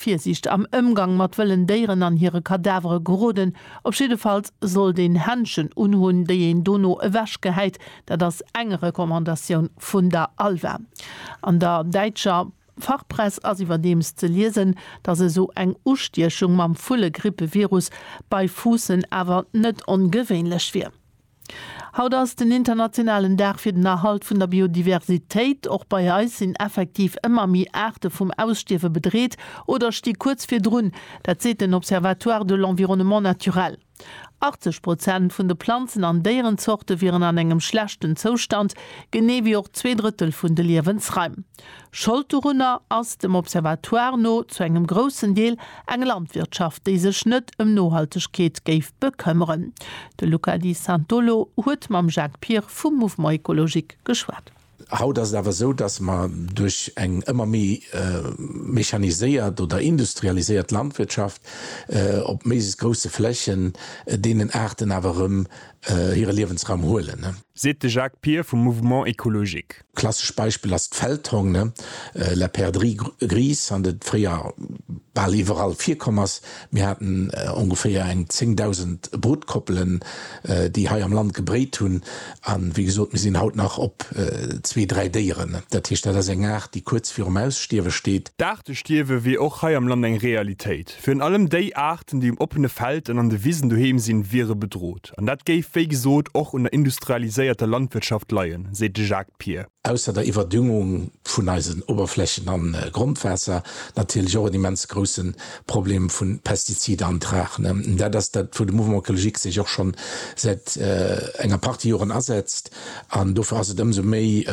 Virsiicht am Ëmgang mat wëllen Déieren an hire Kadavere geroden. Op jiddefalls sollt een Händschen unhunn, déi een dono ewech gehäit. Dat ass eng Recommandatioun vun der ALVA. An der däitscher Fachpress ass iwwerdeems ze liesen, datt esou eng Ustiechung mam Vullegrippe-Virus bei Fuussen awer net ongewéinlech wier. Haut ass den internationalen Dag fir den Erhalt vun der Biodiversitéit. Och bei eis sinn effektiv ëmmer méi Aarte vum Ausstierwe bedreet oder sti kuerz virdrun. Dat seet den Observatoire de l'environnement naturel. 80 Prozent vun de Planzen an Déierenzorte wieren an engem schlechten Zoustand, genee wéi och zwee Drëttel vun de Liewensraim. Schold dorunner ass dem Observatoire no zu engem groussen Deel eng Landwirtschaft, déi sech net ëm Nohaltegkeet géif bekëmmeren. De Luca Di Santolo huet mam Jacques Pir vum Mouvement Ecologique geschwat. Haut ass et awer esou, datt mer duerch eng ëmmer méi mechaniséiert oder industrialiséiert Landwirtschaft op méiglechst grousse Flächen deenen Aarten awer erëm hire Liewensraum huelen. Seet de Jacques Pir vum Mouvement Ecologique. Klassescht Beispill ass d'Feldhong, ne? La perdrix grise, an dat fréier bal iwwerall virkomm ass. Mir haten ongeféier eng 10.000 Brutkoppelen, déi hei am Land gebréit hunn. A wéi gesot, mir sinn haut nach op zwee, dräi Déieren. Dat heescht, dat ass eng Aart, déi kuerz virum Ausstierwe steet. D'Aartestierwe wier och hei am Land eng Realitéit. Virun allem déi Aarten, déi um oppene Feld an an de Wisen doheem sinn, wiere bedrot. An dat géif, wéi gesot, och un der industrialiséierter Landwirtschaft leien, seet de Jacques Pier. Ausser der Iwwerdüngung vun eisen Oberflächen an Grondwaasser natierlech och en immens groussen Problem vun Pestiziden an Trachen. Dat ass dat, wou de Mouvement Ecologique sech och schonn säit enger Partie Joren asetzt. An dofir ass et ëmsou méi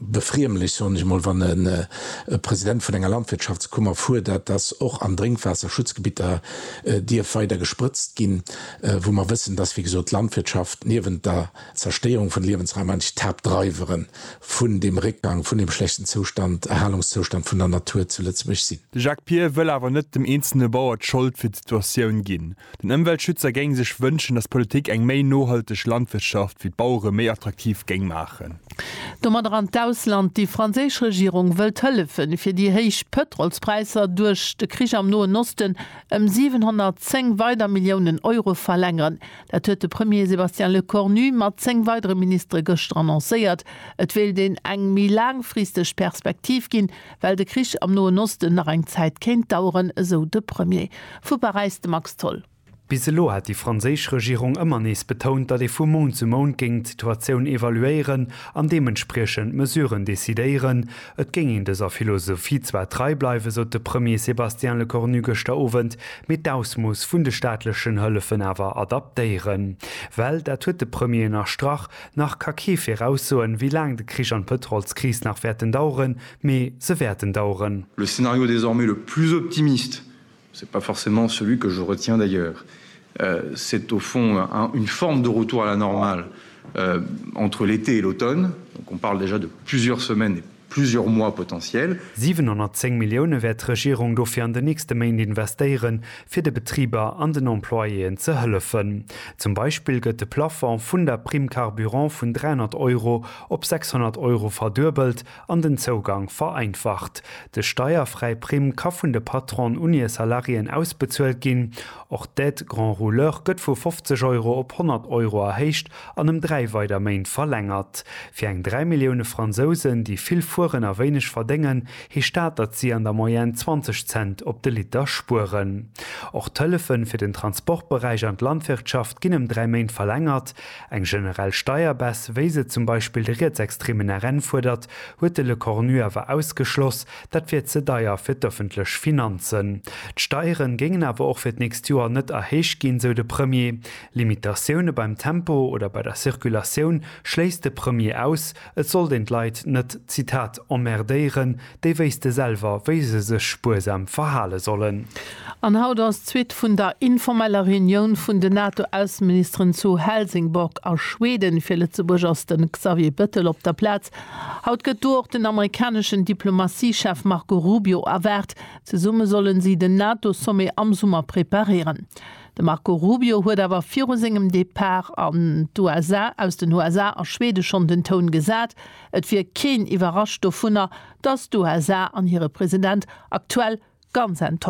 befriemlech, soen ech emol, wann e President vun enger Landwirtschaftskummer fuerdert, dass och an Drénkwaasserschutzgebitter dierf weider gesprëtzt ginn. wou mer wëssen, dass, wéi gesot, d'Landwirtschaft niewent der Zerstéierung vun Liewensraum eigentlech d'Haaptdreiwere vun deem Réckgang, vun deem schlechten Zoustand, Erhalungszoustand vun der Natur zu Lëtzebuerg sinn. De Jacques Pier wëll awer net dem eenzelne Bauer d'Schold fir d'Situatioun ginn. Den Ëmweltschützer géing sech wënschen, dass d'Politik eng méi nohalteg Landwirtschaft fir d'Bauere méi attraktiv géing maachen. Domadder an d'Ausland, Déi franséisch Regierung wëllt hëllefen, fir déi héich Pëtrolspräisser duerch de Krich am Noen Osten ëm 710 weider Milliounen Euro verlängeren. Dat huet de Premier Sébastien Lecornu mat 10 weidere Ministere gëschter annoncéiert. Et wéilt een eng méi laangfristeg Perspektiv ginn, well de Krich am Noen Osten nach eng Zäit kéint daueren, esou de Premier. Vu Paräis de Max Tholl. Bis elo hat déi franséisch Regierung ëmmer nees betount, datt ee vu Mount zu Mount géing d'Situatioun evaluéieren an deementspriechend Mesuren decidéieren, Et géing een dëser Philosophie zwar trei bleiwen, sot de Premier Sébastien Lecornu gëschter Owend, mee d'Ausmooss vun de staatlechen Hëllefen awer adaptéieren. Well, dat huet de Premier ënnerstrach, nach ka kee viraussoen, wéi laang de Krich an d'Pëtrolskris nach wäerten daueren, mee se wäerten daueren. Le scénario désormais le plus optimiste C'est pas forcément celui que je retiens d'ailleurs. C'est au fond une forme de retour à la normale entre l'été et l'automne, donc on parle déjà de plusieurs semaines et plusieurs mois potentiels. 710 Millioune wäert d'Regierung dofir an den nächste Méint investéieren, fir de Betriber an den Employéen ze hëllefen. Zum Beispill gëtt de Plafond vun der Prime carburant vun 300 Euro op 600 Euro verduebelt an den Zougang vereinfacht. De steierfräi Primm ka vun de Patronen un hir Salariéen ausbezuelt ginn. Och d'Aide grand rouleur gëtt vu 50 Euro op 100 Euro erhéicht an ëm dräi weider Méint verlängert. Fir eng dräi Millioune Fransousen, déi vill fueren a wéineg verdéngen, heescht dat, datt si an der Moyenne 20 Cent op de Liter spueren. Och d'Hëllefe fir den Transportberäich an d'Landwirtschaft ginn ëm dräi Méint verlängert. Eng generell Steierbaisse, wéi se zum Beispill de rietsextremen RN fuerdert, huet de Lecornu awer ausgeschloss, dat wier ze deier fir d'ëffentlech Finanzen. D'Steiere géingen awer och fir d'nächst Joer net erhéicht ginn, sou de Premier. Limitatioune beim Tempo oder bei der Circulatioun schléisst de Premier aus. Et sollt een d'Leit net, Zitat, emmerdéieren. Déi wéisste selwer, wéi se sech spuersam verhale sollen. An haut ass d'Suite vun der informeller Reunioun vun den NATO-Ausseministeren zu Helsingborg a Schweden. Fir Lëtzebuerg ass de Xavier Bettel op der Plaz. Haut gëtt do och den amerikaneschen Diplomatie-Chef Marco Rubio erwaart. Zesumme sollen si den NATO-Sommet am Summer preparéieren. De Marco Rubio huet awer viru sengem Depart an d'USA aus den USA a Schwede schonn den Toun gesat. Et wier keen iwwerrascht dovunner, datt d'USA an hire President aktuell ganz enttäuscht sinn.